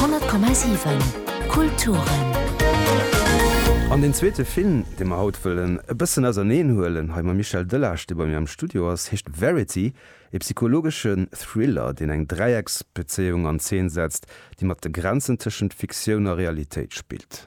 100,7 Kulturen. An deen zweete Film, dee mer haut wëllen e bëssen auserneen huelen, hei mam Michel Delage, dee bei mir am Studio ass, heescht Verity, ee psychologesche Thriller, deen eng Dräiecksbezéiung an Zeen setzt, déi mat de Grenzen tëschent Fiktioun a Realitéit spillt.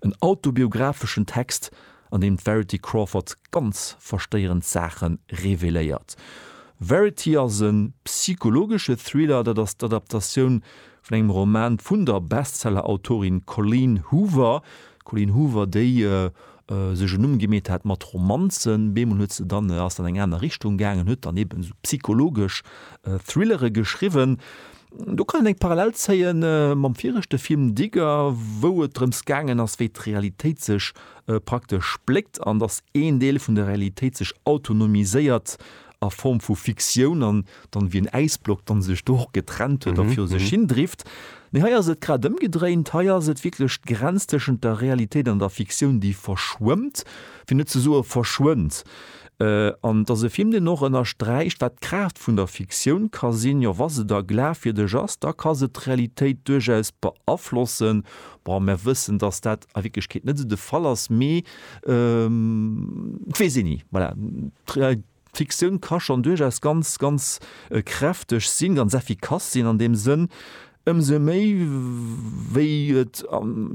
En autobiographeschen Text, an deem d'Verity Crawford ganz verstéierend Saache reveléiert. Verity ass e psychologesche Thriller, dat ass d'Adaptatioun vun engem Roman vun der Bestseller-Autorin Colleen Hoover. D'Colleen Hoover, déi sech en Numm gemeet hat mat Romanzen, bemol huet se dann, ass dann an eng aner Richtung gaangen, huet dann eben esou psychologesch Thrillere geschriwwen. Do kann een eng Parallel zéie mam viregte Film Digger, wou et drëms gaangen ass, wéi d'Realitéit sech praktesch spléckt an datt een Deel vun der Realitéit sech autonomiséiert a Form vu Fiktioun an dann wéi en Äisblock dann sech do och getrennt huet a viru sech hin drift. Nee, hei ass et grad ëmgedréint, hei ass et wierklech d'Grenz tëschent der Realitéit an der Fiktioun, déi verschwëmmt, fir net ze soe verschwënnt. An et ass e Film, deen och ënnersträicht, wat d'Kraaft vun der Fiktioun ka sinn. Jo, wa se da glafwierdeg ass, da ka se d'Realitéit duerchaus beaflossen. Bon, mer wëssen, datt dat a Wierklechkeet net esou de Fall ass, mee weess een ni. Voilà, d'Fiktioun ka schonn duerchaus ganz, ganz kräfteg sinn, ganz effikass sinn an deem Sënn. Ëmsou méi wéi et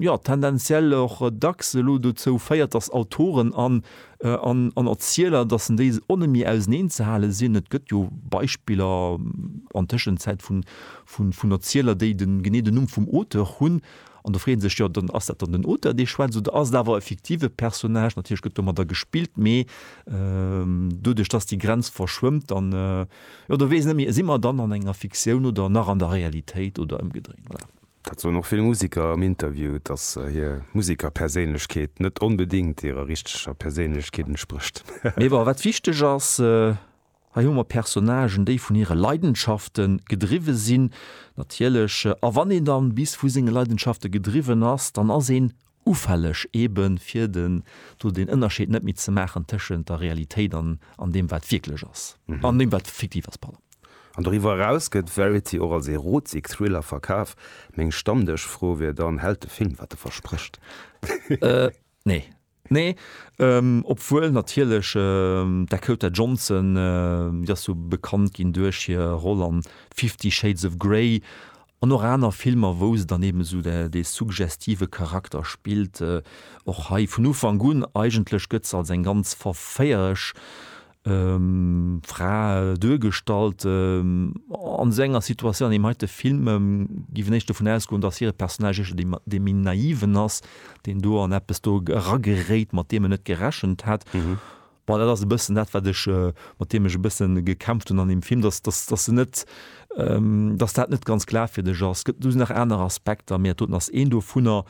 jo tendenziell och dacks elo dozou féiert, datt Autoren an Erzieler, datt en déi onne méi auseneen ze hale sinn. Et gëtt jo Beispiller an Tëschenzäit vun Erzieler, déi genee den Numm vum Auteur hunn. An do freet ee sech jo dann, ass dat dann den Auteur dee schwätzt oder ass et awer e fiktive Personnage? Natierlech gëtt domadder gespillt, mee doduerch datt déi Grenz verschwëmmt, dann Jo, do weess ech net méi, si mer dann an enger Fiktioun oder nach an der Realitéit oder ëmgedréint? Voilà. Dat soen och vill Museker am Interview, dass hir Musekerperséinlechkeet net onbedéngt hirer richteger Perséinlechkeet entsprécht. Mee bon, wat wichteg ass, hei hu mer Personnagen, déi vun hire Leidenschafte gedriwwe sinn, natierlech. A wann een da bis vu senge Leidenschafte gedriwwen ass, dann ass een Ufälleg eben, fir den, do den Ënnerscheed net méi ze maachen tëschent der Realitéit an, an deem wat wierklech ass, an deem wat fiktiv ass, pardon. An doriwwer eraus gëtt Verity och als Erotik Thriller verkaf. Meng Stammdëschfro wier dann, Hält de Film wat e versprécht? Nee. Nee. Obwuel natierlech d'Dakota Johnson, déi ass jo bekannt ginn duerch hir Roll an Fifty Shades of Grey, An och aner Filmer, wou se dann eben esou dee suggestive Charakter spillt. Och hei vun Ufank un, eigentlech gëtt se als eng ganz verféierlech Fra duergestallt an esou enger Situatioun. An eben hei de Film géif een éischt dovun ausgoen, datt hire Personnage éischter dee dee méi Naiven ass, deen do an eppes do erageréit, mat deem en net gerechent hätt. Bon, dat ass e bëssen dat, wat ech, mat deem ech e bësse gekämpft hunn an deem Film, dass, dass, dass se net, dass dat net ganz glaafwierdeg ass. Et gëtt do nach aner Aspekter, mee doten ass een dovunner.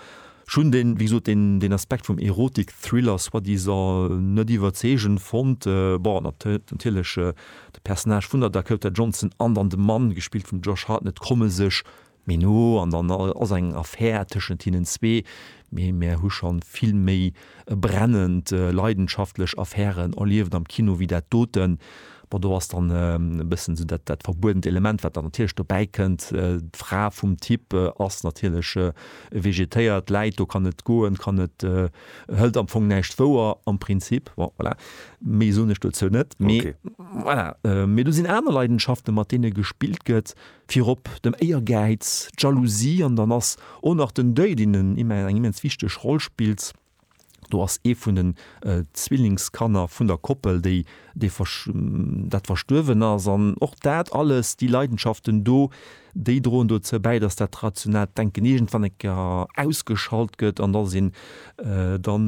Ech hunn deen, wéi gesot, deen, deen Aspekt vum Erotik-Thriller soi-disant net iwwerzeegend fonnt. Bon, an ob natierlech de Personnage vun der Dakota Johnson an dann de Mann, gespillt vum Josh Hartnett, komme sech Mee no an dann ass eng Affär tëschent hinnen zwee. Mee mär hu schonn vill méi brennend, leidenschaftlech Affären erlieft am Kino wéi dat doten. Bon, do ass dann e bëssen esou dat, dat verbuedent Element, wat dann natierlech dobäi kënnt. D'Fra vum Typ ass natierlech vegetéiert, läit do, kann net goen, kann net, hëlt am Fong näischt wouer am Prinzip. Bon, voilà, méi soen ech dozou net. Mee voilà, mee do sinn aner Leidenschaften, mat deene gespillt gëtt. Virop dem Éiergäiz, d'Jalousie an dann ass o nach den Deuil, deen en eng immens wichteg Roll spillt. Do ass ee vun den Zwillingskanner vun der Koppel, déi dee dat verstuerwen ass. An och dat alles, déi Leidenschaften do, déi droen dozou bäi, dass dat rationaalt Denken iergendwann eng Kéier ausgeschalt gëtt an dass een dann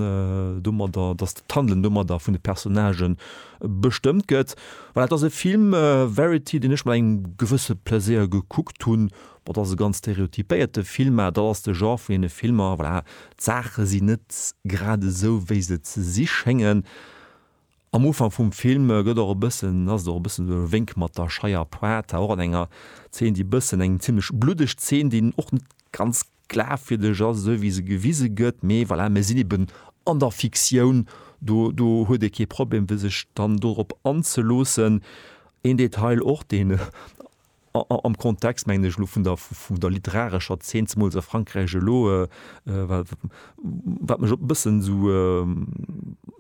domadder, dass d'Handelen domadder vun de Personnagen bestëmmt gëtt. Voilà, et ass e Film, Verity, deen ech mat engem gewësse Plaisir gekuckt hunn. Bon, et ass e ganz stereotypéierte Film, mä dat ass de Genre vun deene Filmer, voilà, d'Saache sinn net grad esou, wéi se ze si schéngen. Am Ufank vum Film gëtt och e bëssen, ass et och e bëssen esou e Wénk mat der scheier Pointe, och an enger Zeen, déi e bëssen, eng zimmlech bluddeg Zeen, déi een och net ganz glafwierdeg ass, esou wéi se gewise gëtt, mee voilà, mir sinn eben an der Fiktioun, do, do huet ee kee Problem, fir sech dann dorop anzeloossen. Een Detail och, deen am Kontext, mengen ech, elo vun der, vun der literarescher Zeen, zemools a Frankräich elo, wat, wat mech e bëssen esou,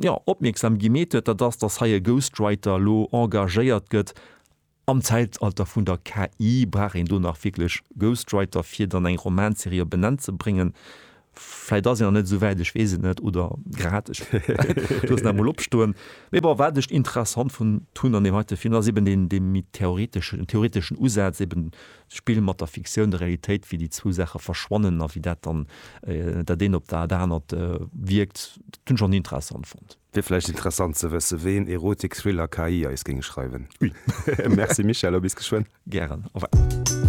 jo, opmierksam gemeet huet, dat ass, datt hei e Ghostwriter elo engagéiert gëtt, Am Zäitalter vun der KI brauch een do nach wierklech Ghostwriter fir dann eng Romanserie op en Enn ze bréngen. Vläit ass een nach net esou wäit, ech weess et net, oder grad, ech loossen dat mol opstoen. Mee bon, wat ech interessant fonnt hunn an deem heite Film, dat ass eben deen, dee méi theoreteschen, den theoreteschen Usaz, eben d'Spill mat der Fiktioun, der Realitéit, wéi déi zwou Saache verschwannen a wéi dat dann dat eent op dat anert wierkt. Dat hunn ech och interessant fonnt. Wier vläicht interessant ze wësse ween Erotik-Thriller KI eis géing schreiwen. Ui! Merci Michèle a bis geschwënn. Gären, au revoir.